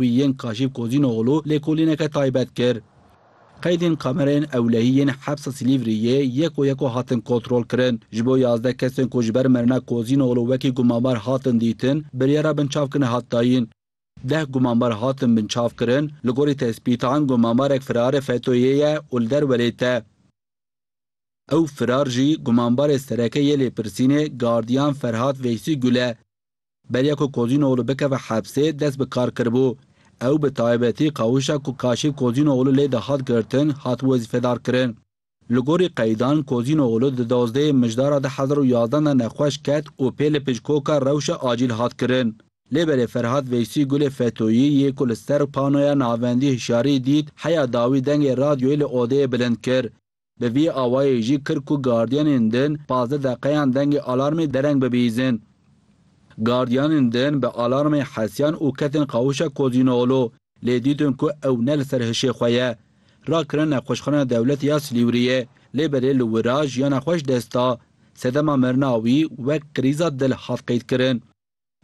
wî yên Kaşîf Kozînoglû lêkolîneke taybet kir. Qeydên kamereyên ewlehî yên Hepsa Silîvriyê yeko yeko hatin kontrolkirin. Ji bo yazdeh kesên ku ji ber mirina Kozînoglû wekî gumanbar hatin dîtin, biryara binçavkirine hat dayîn. Deh gumanbar hatin binçavkirin, li gorî tespîtan gumanbarek firarê FETÖ'yê ye û li derwelê te. Ew firar jî gumanbarê sereke yê lêpirsînê gardiyan Ferhat Veysî Gul e. Beriya ku Kozînoglû bikeve hepsê dest bi kar kiribû. Ew bi taybetî qawişa ku Kaşif Kozînoglû lê de hat girtin hat wezîfedarkirin. Li gorî qeydan Kozînoglû di dozdehê mijdara du hezar û yazdan de nexweş ket û pê li pickoka rewşa acîl hat kirin. Lê berê Ferhat Veysî Gulê Fetoyî yê ku li ser panoya navendî hişyarî dît heya dawî dengê radyoyê li odeyê bilind kir. Bi vî awayî jî kir ku gardiyanên din pazdeh deqeyan dengê alarmê dereng bibîzin. Gardiyanên din bi alarmê hesiyan û ketin qawûşa Kozînoğlu, lê dîtin ku ew ne li ser hişê xwe ye. Rakirine Nexweşxana Dewletê ya Silîwriyê, lê berê li wira jiyana xwe ji dest da. Sedema mirina wî wek krîza dil hat qeydkirin.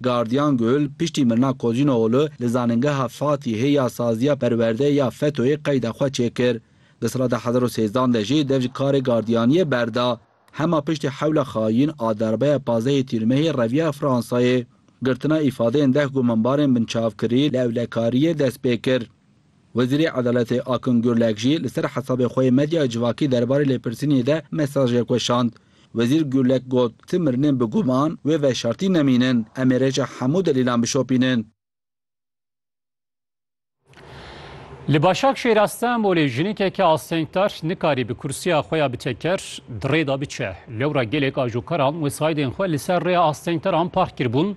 Gardiyan Gül, piştî mirina Kozinooglu li Zanîngeha Fatîhê ya Saziya Perwerdeyê ya FETÖ'yê qeyda xwe çêkir. Di sala du hezar û sêzdan de jî dev ji karê gardiyaniyê berda. Hema piştî hewla xayîn a darbeya pazdehê tîrmehê reviya Fransayê. Girtina îfadeyên deh gumanbarên binçavkirî li ewlekariyê dest pê kir. Wezîrê Edaletê Akın Gürlek jî li ser hesabê xwe yê medyaya civakî derbarê lêpirsînê de mesajek weşand. Wezîr Gürlek got, Ti mirinên bi guman wê veşartî nemînin. Em ê rêça hemû delîlan bişopînin. Li Başakşehîr a Stenbolê jinikeke astengdar nikarî bi kursiya xwe ya bi teker di rê de biçe. Lewra gelek ajokaran wesaîdên xwe li ser rêya astengdaran park kiribûn.